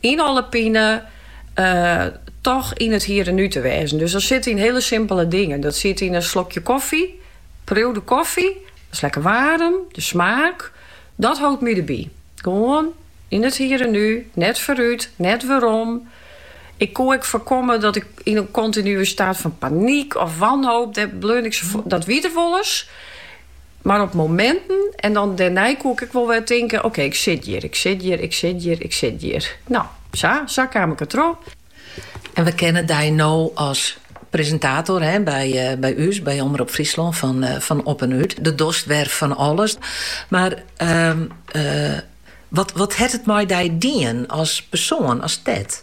Yn alle pinen toch yn it hier en nu te wêzen. Dus dat sit yn hiele simpele dingen. Dat sit yn in slokje koffy. Priuw de koffy, dat is lekker waarm, de smaak. Dat hâldt my derby. Gewoan yn it hier en nu, net foarút, net werom. Ik koe ek foarkomme dat ik yn in kontinue staat fan panyk of wanhoop, dêr bleaun ik sa foar. Dat wie der wolris. Mar op mominten, en dan dernei koe ik ek wol wer tinken, ok, ik sit hjir, ik sit hjir, ik sit hjir, ik sit hjir. Nou, sa, sa kaam ik der troch. En we kennen dy no as presintator, hè, by, by ús, by Omrop Fryslân, fan, fan Op en Út. Dêr dochst wer fan alles. Mar wat, wat hat it mei dy dien, as persoan, as Ted?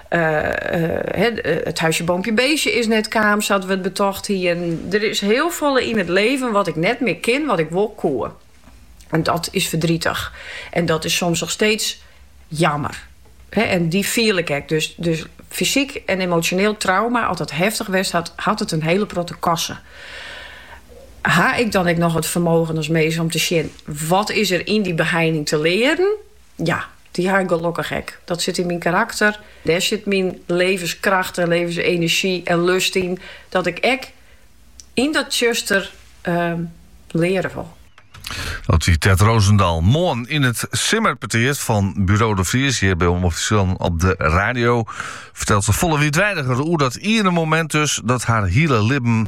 It huisje, boompje, beestje is net kaam sa't we it betocht hienen. Der is hiel folle yn it leven wat ik net mear kin wat ik wol koe. En dat is ferdritich. En dat is soms noch steeds jammer. En dy fiel ik ek. Dus fysyk en emosjoneel trauma, as dat heftich west hat, hat it in hiele protte kosten. Ha ik dan ek noch it fermogen as mins om te sjen wat is der yn dy beheining te learen? Ja. Dy ha ik gelokkich ek. Dat sit yn myn karakter. Dêr sit myn levenskracht en levensenerzjy en lust yn. Dat ik ek yn dat tsjuster leare wol. Dat sei Ted Rosendaal moarn yn it simmerpetear fan Buro De Vries hjir by Omrop Fryslân op de radio. Fertelt se folle wiidweidiger oer dat iene momint dus, dat har hiele libben